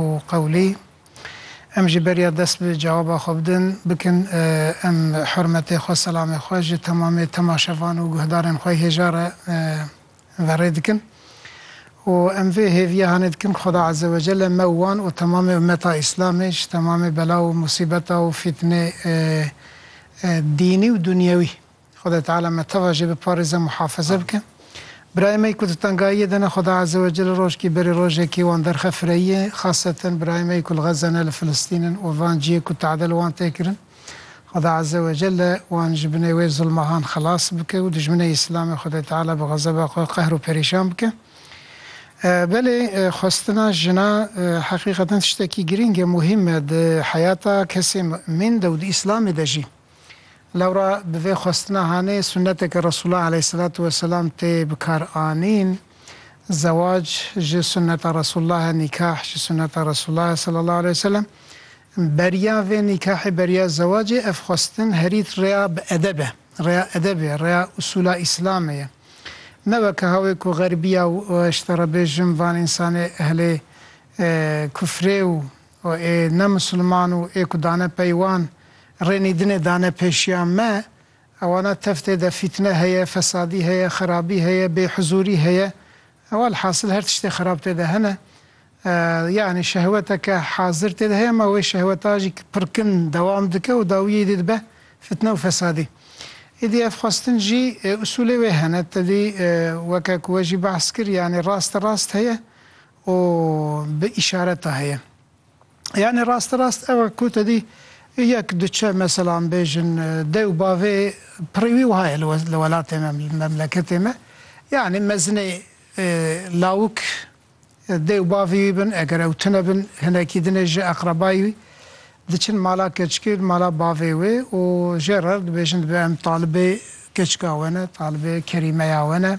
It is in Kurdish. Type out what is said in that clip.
û qewlî. Em jî beriya dest bi cewaba xwe bidin bikin. Em hurmetê xwe, selamê xwe ji temamê temaşevan û guhdarên xwe hêja re verê dikin û em vê hêviya hanê dikin Xweda Ezzewecelle me û wan û temamê ummeta Îslamê ji temamê bela û musîbeta û fîtinê dînî û dunyewî Xweda Teala me teva jê biparêze muhafize bike. Birayê me ku di tengayiyê de ne Xweda Azewecel rojkî berê rojekî wan derxe fireyiyê xaseten birayê me ku li Xeza ne li Filistîn in û van ciyê ku tade li wan tê kirin Xweda Azewecel wan ji binê wê zilmahan xelas bike û dijminê Îslamê Xwedê Teala bi xezeba xwe qehr û perîşan bike. Belê xwestina jina heqîqeten tiştekî girîng e, muhîm e di heyata kesê mumîn de û di Îslamê de jî. Lewra bi vê xwestina hanê sunneteke Resûla eleyhisselatu weselam tê bikar anîn, Zewac ji sunneta Resûllah e, nîkah ji sunneta Resûllah e sallallahu aleyh weselem. Beriya vê nîkahê, beriya zewacê ev xwestin herî rêya bi edeb e, rêya edebê ye, rêya usûla Îslamê ye. Ne weke hawê ku xerbiya û ji te re bêjim van însanê ehlê kufrê û Û ê ne misilman û ê ku dane pey wan, rê nîdinê dane pêşiya me, ewana teftê de fîtne heye, fesadî heye, xerabî heye, bêhuzûrî heye, welhasil her tiştê xerab tê de hene. Yanî şehweteke hazir tê de heye ma wê şehweta jî pirkin dewam dike û dawiyê dî dibe fîtne û fesadî. Îdî ev xwestin jî usulê wê hene, tedî weke ku we jî behs kir yanî raste rast heye û bi îşareta heye. Yanî rasterast ew e ku te dî yek diçe mesela em bêjin dew bavê pirî wî wiha ye li welatê me, li memleketê me. Yanî mezinê lawik dew bavê wî bin, eger ew tune bin hinekî din ê ji eqrebayî wî diçin mala keçikê, mala bavê wê û jê re dibêjin divê em talibê keçika we ne, talibê kerîmeya we ne.